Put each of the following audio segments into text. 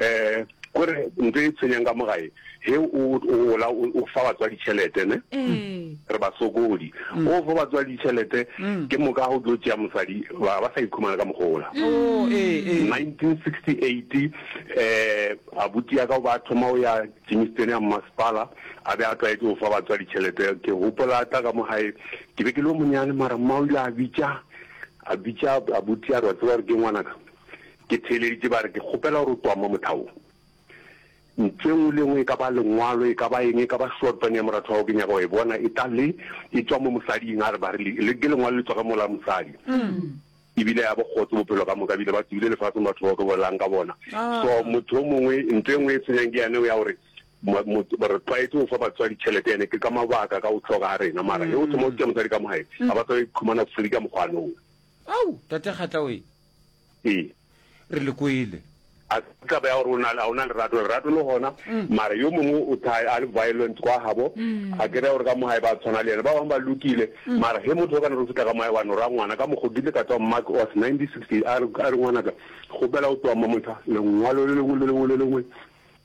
Ee, ko re ntho e tshwenyang ka mo gae he o o gola o o fa batswadi tšhelete ne Ee. re ba sokodi o fa batswadi tšhelete ke moka go tlo tšea mosadi ba ba sa ikhumana ka mogola Oh, ee, ee. 1968 um abuti ya ka o ba thoma o ya tšimistene ya mmasepala a be a tlwaetse go fa batswadi tšhelete ke gopola tla ka mo gae ke be ke le o monyane mara mma o ile a bitša a bitša abuti a re wa tseba gore ke ngwanaka Ke theeleditše ba re, Ke kgopela gore o twame mothawong. Ntlo e nngwe le e nngwe, e ka ba lengwalo, e ka ba eng, e ka ba šortwane ya moratho wa gago, ke nyaka go e bona e tla le e tšwa mo mosading, a re ba re, ke lengwalo le tšwa ge mola wa mosadi. E bile ya bokgotse bophelo ka moka, ebile ba tsogile lefaseng batho bao ke bolelang ka bona. So motho yo mongwe, ntlo e nngwe e tshwenyang ke yane ya gore re tlwaetse go fa batswadi tšhelete, yane ke ka mabaka ka go hloka ga rena, mara ge o thoma go tšea mosadi ka mo gae, ga ba sa ikhumana free ka mokgwa yane oo. Ao, Tate Kgatla oye! Ee. Re le kwele. A se taba ya gore o na le a ona lerato lerato le gona mara yo mongwe o tha a le violent kwa habo a kere gore ka mo hae ba tshwana le yena ba bang ba lokile mara he motho o kana re fitla ka moya wa no ra ngwana ka mokgo dile ka tswa mark was 1960 a re a re ngwana ka go bela o tswa mo motho lengwalo le lengwe le lengwe le lengwe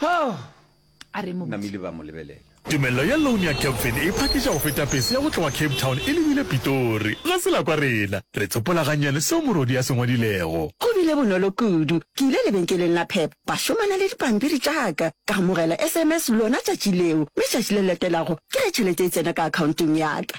Hoo! a re mobotse. Namile ba mo lebelela. Tumello ya loan ya Capfin e phakiša go feta pese ya go tloga Cape Town e lebile Pitori. Ga se la kwa rena. Re tsopola gannyane seo morwodi a se ngwadilego. Go bile bonolo kudu. Ke ile lebenkeleng la Pep, ba šomana le dipampiri tša ka. Ka amogela SMS lona tšatši leo, mme tšatši le latelago ke ge tšhelete e tsena ka akhaonteng ya ka.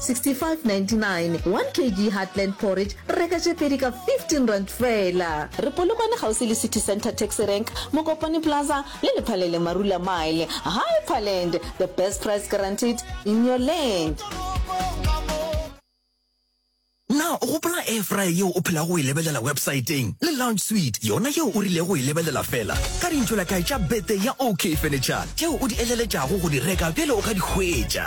6599 1 kg Heartland porridge reka tše pedi ka 15 rand fela. Re Polokwane kgauswi le City Centre Taxi Rank, Mokopane Plaza le Lephalele Marula Mile. Hyperland, the best price guaranteed in your land. Na o gopola air fryer yeo o phelago o e lebelela websaeteng le lounge suite yona yeo o rilego go e lebelela fela ka dintšholakae tša birthday ya OK Furniture tšeo o di eleletšago go di reka bjale o ka di hwetša?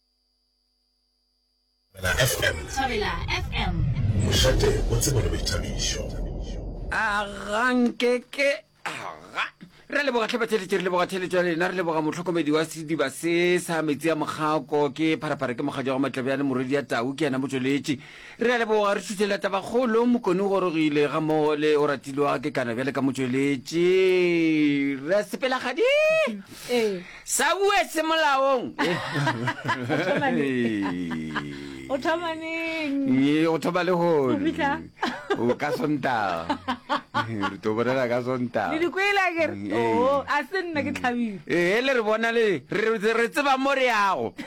Thobela FM. Thobela FM. Mošate o tsebo le boithabišo. A ga nke ke aga re a leboga tlhabatheletše re leboga theletšo ya lena re leboga motlhokomedi wa sediba se sa metsi a mokgako ke pharapara ke mokgadi wa go matlabjane morwedi ya tau ke yena motsweletši Re a leboga, re šutšela tabakgolo. Mokone o gorogile ga mmogo le o ratilwe wa ke kana bjale ka motšweletši ra sepelagadi Ee. sa bue se molaong O thoma neng? O thoma neng? Ee, go thoma le Go gone fihla? o ka sontaga re to bolela ka Le sontaga di kwele a kere? Ee. Oo, a se nna ke tlhabile. ee le re bona le re re tseba mo re yago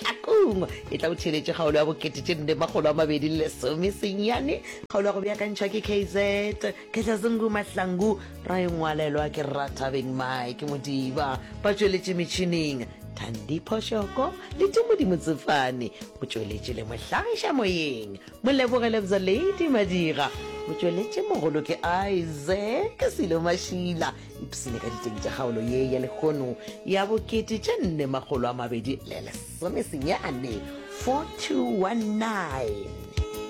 Hlakong e tla o theeletše kgaolo ya bokete tše nne makgolo a mabedi le lesome senyane kgaolo ya go beakantšhwa ke kz khetlazungu mahlangu ra e ngwalelwa ke rathabeng mike modiba ba tšweletše metšhining thandi phošoko le tumodimo tsefane o tšweletše le mohlagiša moyeng moleboge lebza lady madira o tšweletše mogolo ke isaac selo mašila ipsene ka diteng tša kgaolo ye ya lekgono ya bokete tše nne makgolo a mabedi le lesomesenyane 4219